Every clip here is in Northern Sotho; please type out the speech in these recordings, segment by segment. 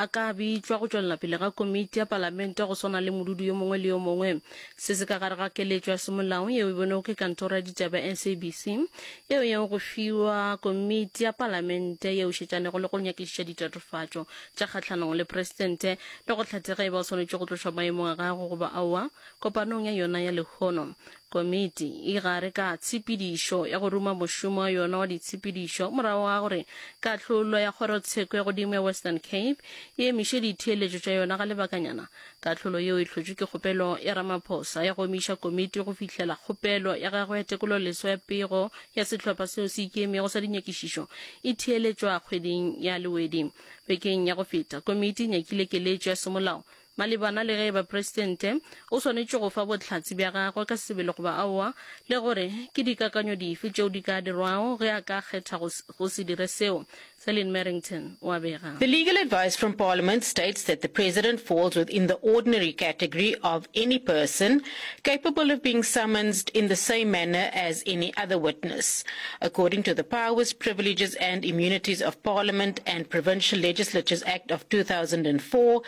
a ka bitšwa go tšwelela pele ga komiti ya Palamente go swana le modudi yo mongwe le yo mongwe. Se se ka gare ga keletšo ya semolao yeo e bonego ke Kantoro ya Ditaba ya SABC yeo yeo go fiwa komiti ya Palamente yeo šetšanego le go nyakišiša ditatofatšo tša kgahlanong le Presidente le go hlathe ge e ba o swanetše go tlošwa maemong a gagwe goba aowa kopanong ya yona ya lehono Komiti e gare ka tshepedišo ya go ruma mošomo wa yona wa ditshepedišo morago ga gore kahlolo ya Kgorotsheko ya Godimo ya Western Cape e emiše ditheeletšo tša yona ga lebakanyana. Kahlolo yeo e hlotšwe ke kgopelo ya Ramaphosa ya go omiša komiti go fihlela kgopelo ya gagwe ya tekololeswa ya pego ya sehlopha seo se ikemego sa dinyakišišo e theeletšwa kgweding ya Lewedi. Bekeng ya go feta, komiti e nyakile keletšo ya semolao Malebana le ge e ba Presidente, o swanetše go fa bohlatse bja gagwe ka sebele goba aowa, le gore ke dikakanyo dife tšeo di ka dirwago ge a ka kgetha go, go se dire seo, Celine Merrington o a bega. The legal advice from Parliament states that the President falls within the ordinary category of any person capable of being summonsed in the same manner as any other witness. According to the Powers, Privileges and Immunities of Parliament and Provincial Legislatures Act of 2004,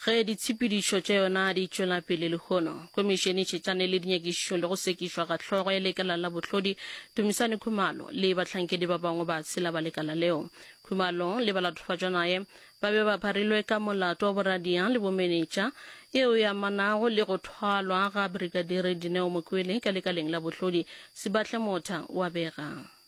Ge ditshepedišo tša yona di tšwela pele lehono, Khomišene e tšhetšane le dinyakišišo le go sekišwa ga hlogo ya lekala la bohlodi Dumisani Khumalo le bahlankedi ba bangwe ba tshela ba lekala leo. Khumalo le balatofadjwanaye ba be ba pharilwe ka molato wa boradia le bomenetša eo e amanago le go thwalwa ga Brigadire Dineo Mokwele ka lekaleng la bohlodi, Sibahle Motha wa bega.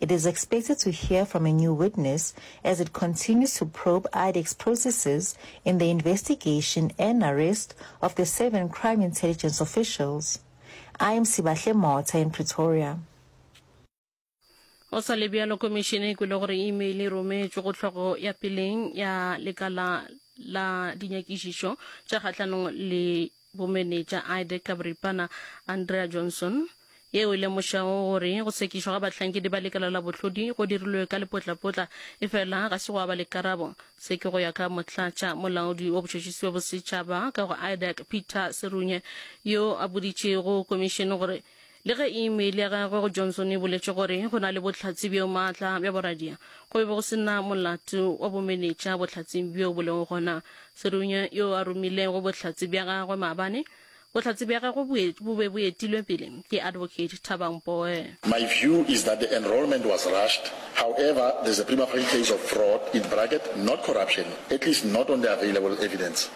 It is expected to hear from a new witness as it continues to probe IDEX processes in the investigation and arrest of the seven crime intelligence officials. I am Sibahle Mota in Pretoria. go sa le bjalo komišene e kwele gore email e rometšwe go hlogo ya peleng ya lekala la dinyakišišo tša kgahlanong le Bomenetša Ide ka boripana, Andrea Johnson, yeo e lemošago gore go sekišwa ga bahlankedi ba lekala la bohlodi go dirilwe ka lepotlapotla, efela ga se gwa ba le karabo. Se ke go ya ka Motlatša Molaodi wa Botšhotšhisi bja Bosetšhaba ka go IDAC, Peter Serunye, yo a boditšego Komišene gore Le ge imeile ya gagwe go Johnson e boletše gore go na le bohlatse bjo maatla bja boradia, go be go se na molato wa bomenetša bohlatseng bjo bo lego gona. Serunya yo a romilego bohlatse bja gagwe maabane, bohlatse bja gagwe bo be bo etilwe pele ke Advocate Thaba Mpoe. My view is that the enrolment was rushed, however there's a prima facie case of fraud, in bracket, not corruption, at least not on the available evidence.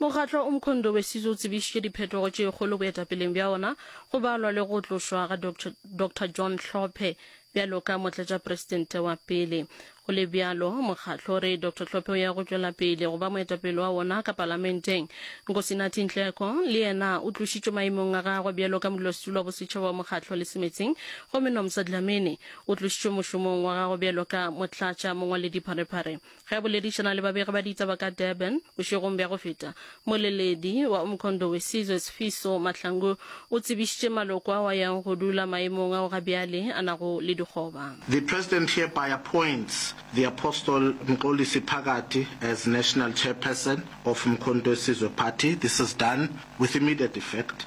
Mokgatlo o Mkhondo Wesizwe o tsebišitše diphetogo tše kgolo boetapeleng bja ona, go balwa le go tlošwa ga Doctor, Doctor John Hlophe bjalo ka motlatšapresidente wa pele. Go le bjalo, mokgatlo o re Doctor Hlophe o ya go tšwela pele go ba moetapele wa wona ka palamenteng. Nkosinathi Nhleko le yena o tlošitšwe maemong a gagwe bjalo ka modulasetulo wa bosetšhaba wa mokgatlo le semetseng, gomme Nomsa Dlamini o tlošitšwe mošomong wa gagwe bjalo ka motlatša mongwaledipharephare ge a boledišana le babegi ba ditaba ka durban bošegong bja go feta moleledi wa umkhondo wesizwe sifiso mahlangu o tsebišitše maloko ao a yang go dula maemong ao ga bjale a nago le dikgoba The President hereby appoints the Apostle Mxolisi Phakathi as National Chairperson of Umkhonto Wesizwe Party. This is done with immediate effect.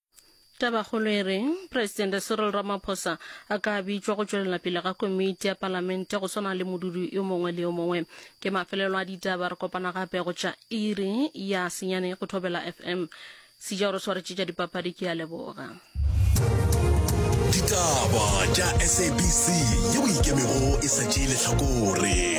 tabakgolo e reng presidente cyril ramaphosa a ka bitšwa go tšwelela pele ga komiti ya palamente go swana le modudi yo mongwe le yo mongwe ke mafelelo a ditaba re kopana gape go tša iri ya senyane go thobela fm sejao re swaretše tša dipapadi ke ya leboga ditaba tša sabc yeo ikemego e sa tšee letlhakore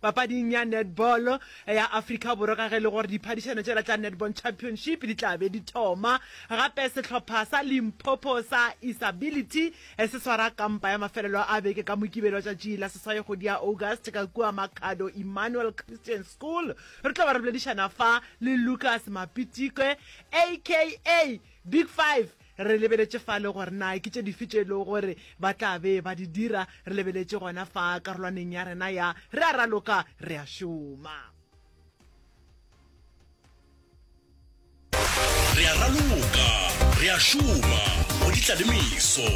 Papading ya netball ya Afrika Borwa ka ge le gore diphadišano tšela tša Netball Championship di tla be di thoma gape, sehlopha sa Limpopo sa Isability se swara kampa ya mafelelo a beke ka Mokibelo tšatši la seswai kgwedi ya August ka kua Makhado Emmanuel Christian School. Re tlo ba re boledišana fa le Lucas Mapitikwe aka Big Five. Re lebeletše fale gore na ke tše dife tše e lego gore ba tla be ba di dira. Re lebeletše gona fa karolwaneng ya rena ya Re a Raloka, Re a Šoma. Re a Raloka, Re a Šoma go di tla le meso.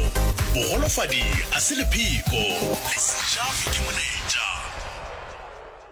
Bogolofadi a se lepheko, le se ja ke monetša.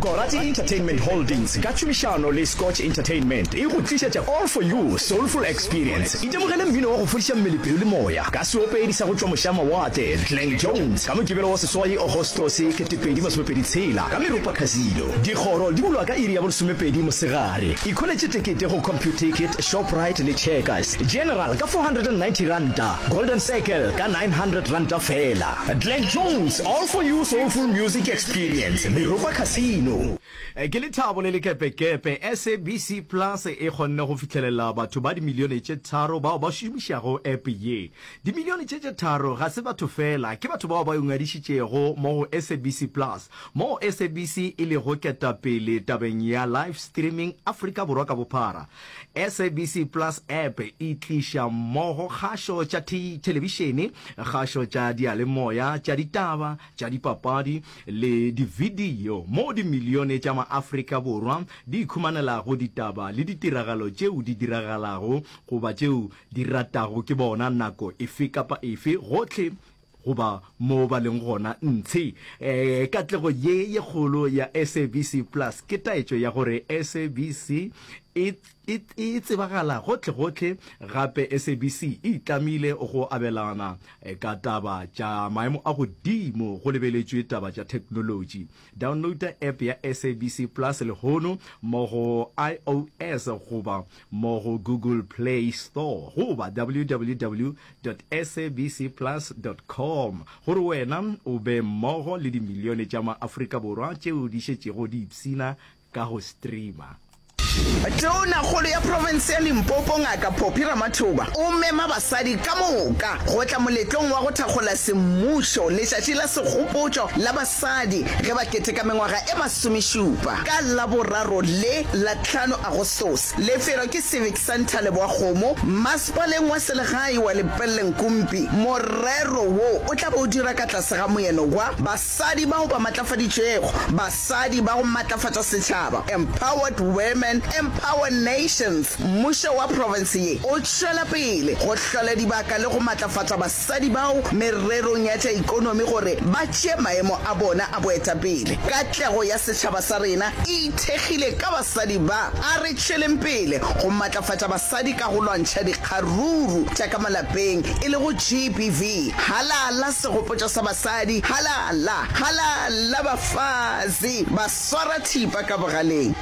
Gorati Entertainment Holdings ka tšhomišano le Scotch Entertainment e go tlišetša All For You Soulful Experience. Itemogele mmino wa go fodiša mmele, pelo le moya ka seopedi sa go tšwa mošamawatle Glenn Jones ka Mokibelo wa seswai Agostose 2026 ka Meropa Casino. Dikgoro di bulwa ka iri ya bolesomepedi mosegare. Ikholetše tekete go Computicket, Shoprite le Checkers. General ka R490, Golden Circle ka R900 feela. Glenn Jones All For You Soulful Music Experience Meropa Casino. Ke lethabo le lekepekepe SABC Plus e kgonne go fihlelela batho ba dimilione tše tharo bao ba šomišago app ye. Dimilione tše tše tharo ga se batho feela, ke batho bao ba ingwadišitšego mo go SABC Plus, moo SABC e lego ketapele tabeng ya live streaming Afrika Borwa ka bophara. SABC Plus app e tliša mmogo kgašo tša thelebišene, kgašo tša diyalemoya, tša ditaba, tša dipapadi le dividiyo moo dimilione tša maAfrika Borwa di ikhumanelago ditaba le ditiragalo tšeo di diragalago goba tšeo di ratago ke bona nako efe kapa efe gohle goba moo ba leng gona ntshe. E, katlego ye ye kgolo ya SABC Plus ke taetšo ya gore SABC e e e tsebagala gohlegohle, gape SABC e itlamile go abelana ka taba tša maemo a godimo go lebeletšwe taba tša theknolotši. Downloada app ya SABC Plus lehono mo go iOS goba mo go Google Play Store goba www dot sabc plus dot com gore wena o be mmogo le dimilione tša maAfrika Borwa tšeo di šetšego di ipshina ka go streamer. Tonakgolo ya profense ya Limpopo Ngaka Phophi Ramathoba o mema basadi ka moka go tla moletlong wa go thakgola semmušo letšatši la segopotšo la basadi ge ba keteka mengwaga e masomešupa ka Laboraro le la tlhano Agostose. Lefelo ke Civic Centre Leboakgomo, masepaleng wa selegae wa Lepelle-Nkumpi. Morero wo o tla be o dira ka tlase ga moeno wa Basadi bao ba matlafaditšwego, Basadi ba go matlafatša setšhaba, Empowered Women, Empower Nations, Mmušo wa profense ye o tšwela pele go hlola dibaka le go matlafatša basadi bao mererong ya tša ikonomi gore ba tšee maemo a bona a boetapele. Katlego ya setšhaba sa rena e ithekgile ka basadi ba. A re tšweleng pele go matlafatša basadi ka go lwantšha dikgaruru tša ka malapeng e lego GBV, halala, Segopotšo sa basadi, Halala! Halala bafazi! Ba swara thipa ka bogaleng.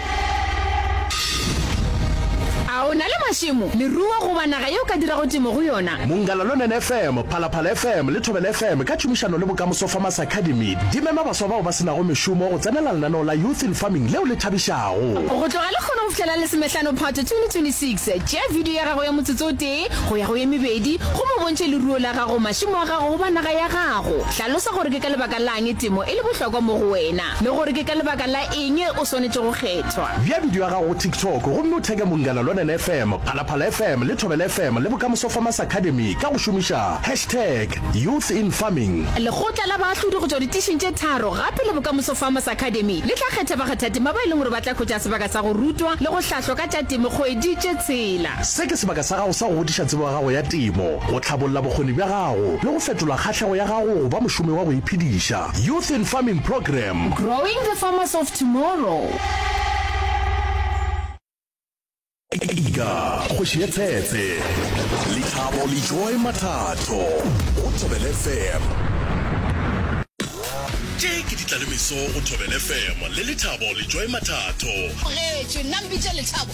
A o na le mašemo, leruo goba naga ye o ka dirago temo go yona? Mongalalunen FM, Phalaphala FM le Thobela FM ka tšhomišano le Bokamoso Farmers Academy di mema baswa bao ba se nago mešomo go tsenela lenaneo la Youth in Farming leo le thabišago. Go tloga lekgono go fihlela lesomehlano Phatwe 2026, tšea video ya gago ya motsotso o tee, tee go ya go ye mebedi, gomme o bontšhe leruo la gago, mašemo a gago goba naga ya gago. Hlalosa gore ke ka lebaka la'ng temo e le bohlokwa mo go wena le gore ke ka lebaka la eng o swanetše go kgethwa. Bea bidio ya gago go TikTok gomme o theke Mongana Lonene FM, Phalaphala FM le Thobela FM le Bokamoso Farmers Academy ka go šomiša hashtag YouthInFarming. Lekgotla la Baahlodi go tšwa ditišing tše tharo gape le Bokamoso Farmers Academy le tla kgetha bakgathatema ba e leng gore ba tla hwetša sebaka sa go rutwa le go hlahlwa ka tša temo kgwedi tše tshela. Se ke sebaka sa gago sa go godiša tsebo ya gago ya temo, go tlhabolla bokgoni bja gago le go fetola kgahlego ya gago go ba mošomi wa go iphediša. Youth in Farming Program. Growing the farmers of tomorrow. Ika, kgoši ye tsetse. Lethabo le Joy Mathato go Thobel FM. Tše ke ditlalemeso go Thobel FM le Lethabo le Joy Mathato. Bogetše, nna mpitša Lethabo.